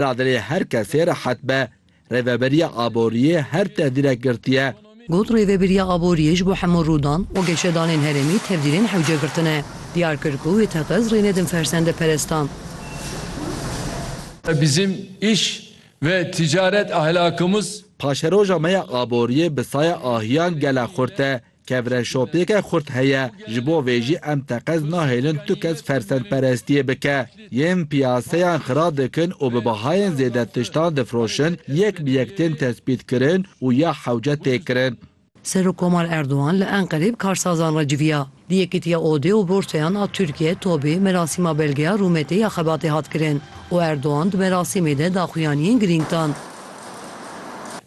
ra dilê her kesê rehet be. Rêveberiya Aboriyê her tevdîrek girtiye. Got, Rêveberiya Aboriyê ji bo hemû rûdan û geşedanên herêmî tevdîrên hewce girtine. Diyar kir ku wê teqez rê nedin fersendeperestan. Bizim iş ve ticaret ahlakımız. Paşeroja me ya aboriyê bi saya ahiyan gele xurt e. Kevre şopêke xurt heye, ji bo vê jî em teqez nahêlin tu kes fersendperestiyê bike. Yên piyaseyan xira dikin û bi bahayên zêde tiştan difroşin, yek bi yek tên tespîtkirin û ya hewce tê kirin. Serokkomar Erdogan li Enqereyê bi karsazan re civiya. Di Yekîtiya Odê û Borsayan a Tirkiyeyê, TOB'ê, merasîma belgeya rûmetê ya xebatê hat kirin û Erdogan di merasîmê de daxuyaniyên girîng dan.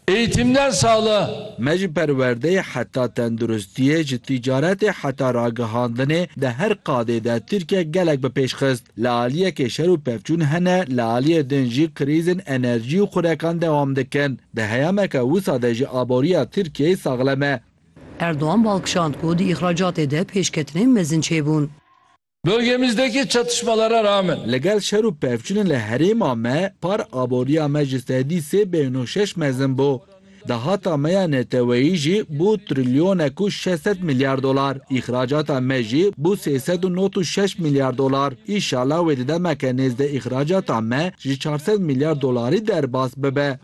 Eğitimden sağlığa. Me ji perwerdeyê heta tenduristiyê, ji tîcaretê heta ragihandinê di her qadê de Tirkiye gelek bi pêş xist. Li aliyekê şer û pevçûn hene, li aliyê din jî krîzên enerjî û xurekan dewam dikin. Di heyameke wisa de jî aboriya Tirkiyeyê saxlem e. Erdogan balkişand ku di îxracatê de pêşketinên mezin çêbûn. Bölgemizdeki çatışmalara rağmen. Li gel şer û pevçûnên li herêma me par aboriya me ji sedî sê bêhn û şeş mezin bû. Dahata me ya neteweyî jî bû trilyonek û şeş sed milyar dolar. Îxracata me jî bû sê sed û not û şeş milyar dolar. Înşala wê di demeke nêzdeh îxracata me ji çar sed milyar dolarî derbas bibe.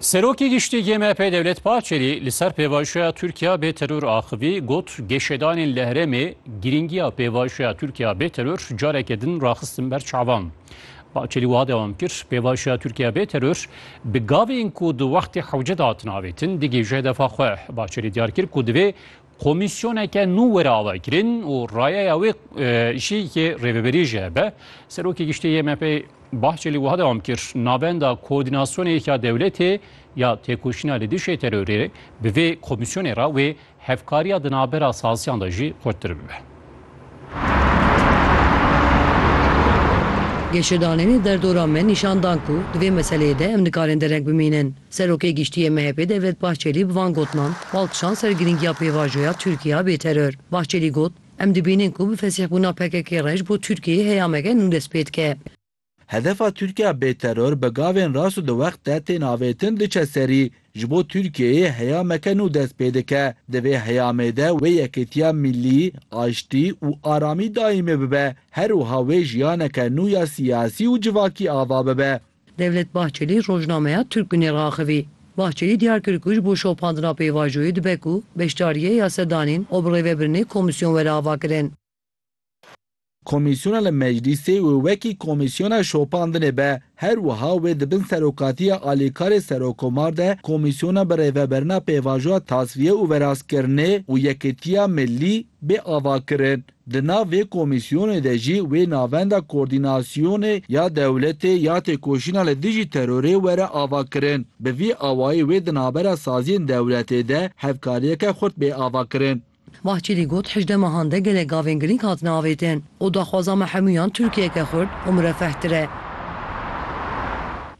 Serokê Giştî yê MHP'ê Dewlet Bahçelî li ser pêvajoya Tirkiya bê teror axivî got geşedanên li herêmê girîngiya pêvajoya Tirkiya bê teror careke din raxistin ber çavan. Bahçelî wiha dewam kir, pêvajoya Tirkiya bê teror bi gavên ku di wextê hewce de hatin avêtin digihîje hedefa xwe. Bahçelî diyar kir ku divê Komîsyoneke nû were avakirin û rayeya wê jî yê Rêveberî jî hebe. Serokê Giştî yê MHP'ê Bahçelî wiha dewam kir, Navenda Koordînasyonê ya Dewletê ya Têkoşîna li Dijî Terorê bi vê komîsyonê re wê hevkariya di navbera saziyan de jî xurttir bibe. Geşedanên derdora me nîşan dan ku di vê meseleyê de em nikarin dereng bimînin. Serokê Giştî yê MHP'ê Devlet Bahçelî bi van gotinan bal kişand ser girîngiya pêvajoya Tirkiye a bêteror. Bahçelî got, Em dibînin ku bi fesîhbûna PKK'ê rej bo Tirkiyeyê heyameke nû dest pê dike. Hedefa Tirkiya bê teror bi gavên rast û di wext de tên avêtin diçe serî. Ji bo Tirkiyeyê heyameke nû dest pê dike. Di vê heyamê de wê yekêtiya mîllî, aştî û aramî daîmê bibe. Her wiha wê jiyaneke nû ya siyasî û civakî ava bibe. Devlet Bahçelî rojnameya Türk Günü'ê raxivî. Bahçelî diyar kir ku ji bo şopandina pêvajoyê dibe ku beşdariyê ya sedanên û bi rêvebirinê komîsyon were avakirin. Komîsyona li Meclîsê wê wekî komîsyona şopandinê be. Her wiha wê di bin serokatiya alîkarê Serokomar de komîsyona bi rêveberina pêvajoya tasfiye û verastkirinê û Yekitiya Milî bê avakirin. Di nav vê komîsyonê de jî wê navenda koordînasyonê ya dewletê ya têkoşîna li dijî terorê were avakirin. Bi vî awayî wê di navbera saziyên dewletê de hevkariyeke xurt bê avakirin. Bahçelî got, Hejdeh mehan de gelek gavên girîng hatine avêtin û daxwaza me hemûyan Tirkiyeke xurt û mirefehtir e.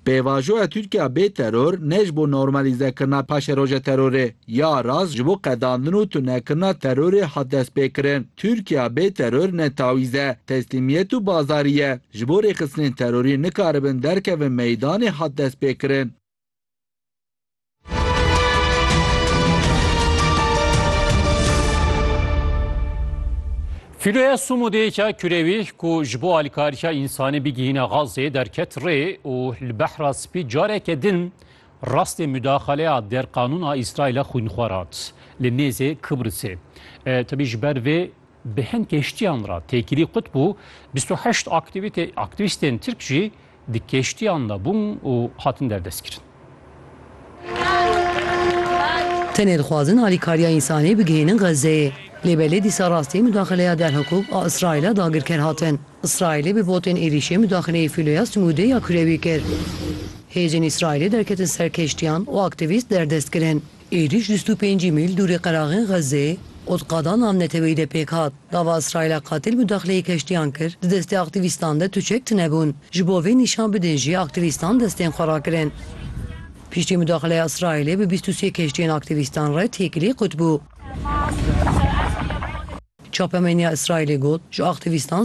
Pêvajoya Tirkiya bê teror ne ji bo normalizekirina paşeroja terorê ya rast ji bo qedandin û tunekirina terorê hat destpêkirin. Tirkiya bê teror ne tawîz e, teslîmiyet û bazarî ye. Ji bo rêxistinên terorî nikaribin derkevin meydanê hat destpêkirin. Filoya Sumudêka Kurewî ku ji bo alîkariya însanî bigihîne Xazê derket rê û li behra spî careke din rastê mudaxaleya derqanûn a Îsraîlê xwînxwar hat li nêzê Kibrisê. Tevî ji ber vê bi hin kêştiyan re têkilî qut bû, 28 aktîvîstên Tirk jî Di keştiyan de bûn û hatin derdestkirin. Tenê dixwazin alîkariya însanî bigihînin Xezzeyê. Lê belê dîsa rastî mudaxileya derhikûk a Îsraîlê dagirker hatin. Îsraîlê bi botên êrîşê mudaxileyê fîloya simûdê ya kurewî kir. Hêzên Îsraîlê derketin ser keştiyan û aktîvîst derdestkirin. Êrîş di stû pêncî mîl dûrê qeraxên Xezê û di qada navneteweyî de pêk hat. Gava Îsraîla qatil mudaxileyê keştiyan kir, di destê aktîvîstan de tu çek tune bûn. Ji bo vê nîşan bidin jî aktîvîstan destên xwe rakirin. Piştî mudaxileya Îsraîlê bi bîst û sê keştiyên aktîvîstan re têkilî qut bû. Çapemeniya Îsraîlê got, ji aktîvîstan